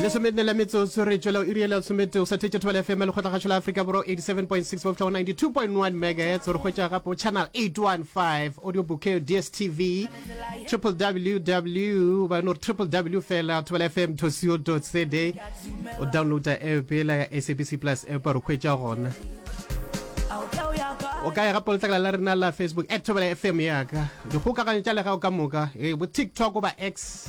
lesomenne la metsotso re tšwela o iriela somete o sa thetše thobela fm le kgotlagašo la afrika borwa 87.6 bofla go 92.1 megahertz gore hwetša gape o channel 815 audio bouquet dstv triple ww ba no re triple w fela thobela fm co cd o downloada app ela ya sabc plus app re hwetša gona o ka ya gape letlakala la rena la facebook at thobela fm yaka dikgokaganyo tša lega o ka moka e eh, bo tiktok goba x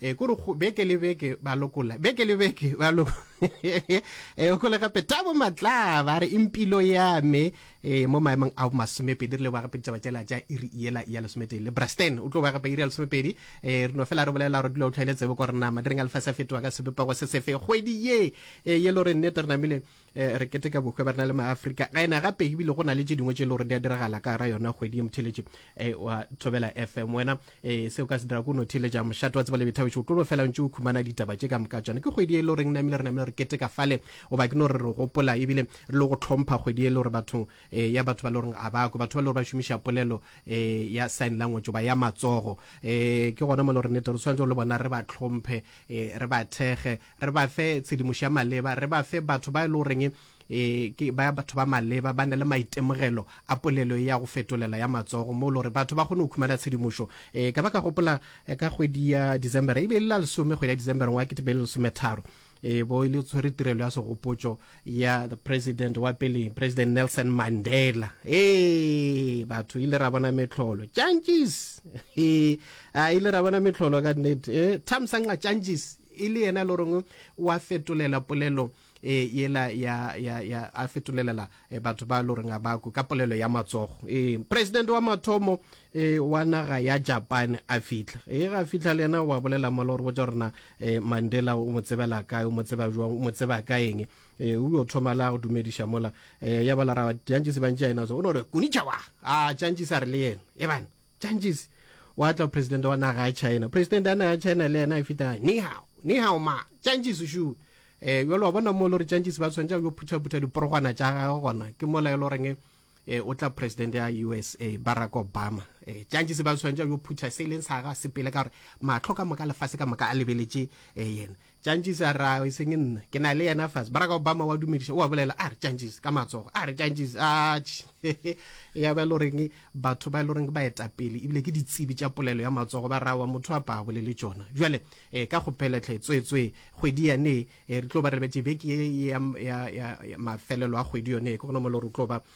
e kore beke le beke ba lokola beke le beke ba lo e go le gape tabo matla ba re impilo ya me e mo maemong a masome pedi re le ba gape ditaba tsela tša iri yela ya lesome tee le brasten o tlo ba gape iri ya lesome pedi e re no fela re bolela gore dilo o tlhaile tsebo gore na madireng a lefase a fetoga ka sebepego se sefe kgwedi ye e ye lo re nnete re namile Eh, re keteka bohwe ba rena le maafrika ga ena gape ebile go na le tse dingwe tse e le gore di a diragala ka ra yona kgwedi e motheletše um eh, wa thobela fm wena um eh, seo ka se dira ko no theletša mošate wa tseba le bethabetše o tlo fela ntse o khumana ditaba tše ka moka tsone ke kgwedi e le goreng namile re namile re keteka fale goba ke no re re gopola ebile re le go tlhompha kgwedi e le gore batho um ya batho ba le goreng a bako batho ba le gore ba šomiša polelo um ya sign language ba ya matsogo um ke gona mo le gore nete re tshwanetse le bona re ba tlhomphe um re ba thege re ba fe tshedimošo ya maleba, re ba fe batho ba e le goreng e ke ba batho ba maleba ba na le maitemogelo a polelo e ya go fetolela ya matsogo mo e le gore batho ba kgone go khumana tshedimošo um ka ba ka gopola eh, ka kgwedi ya december e be e le la lesome kgwedi ya december ngwa ke tebele lesometharo e bo e le tshwere tirelo ya segopotso ya the president wa pele president nelson mandela ee batho ile ra bona metlholo changes ee a ile ra bona metlholo ka nnete eh, thamsanqa changes e le yena le reng o a fetolela polelo e yela ya ya ya a fetolelela e, batho ba lo reng ba ka polelo ya matsogo e president wa mathomo e wa naga ya Japan a fitla e ga fitla le yena wa bolela mo lo re botsa rena e Mandela o mo tsebela kae o mo tseba jwa o mo tseba ka eng e o yo thoma la go dumedisha mola e ya bala ra jantsi se bantsi yena so o no re kunichawa a jantsi sa re le yena e bana Tšantšisi, gwa tla presidente wa naga ya China. Presidente ya naga ya China le yena e feta, Ni hao, ni hao ma, Tšantšisi šu. Eh, jalo wa bona mo le gore Tšantšisi ba tshwanetša go phutha-phutha diporogwana tša gagwe gona, ke mola e le goreng eh, eh, o tla presidente ya USA, Barack Obama. Eh, Tšantšisi ba tshwanetša go phutha se e leng sa ga sepele ka gore mahlo ka moka lefase ka moka a lebeletše eh, yena. Tšantšis a re, Ao, e seng nna. Ke na le yena fase. Barack Obama o a dumediša, o a bolela, a re, Tšantšis, ka matsogo, a re, Tšantšis, atš! He-he! Eya ba e le goreng batho ba e le goreng ke baetapele e bile ke ditsebi tša polelo ya matsogo ba re, Aowa, motho a pa bolele tšona. Bjale, ee, ka kgopela hle, tsweetswee, kgwedi yane, ee, re tlo ba re lebetše beke ye ya, ya, ya, ya mafelelo a kgwedi yone, ke gona mo e le gore o tlo ba,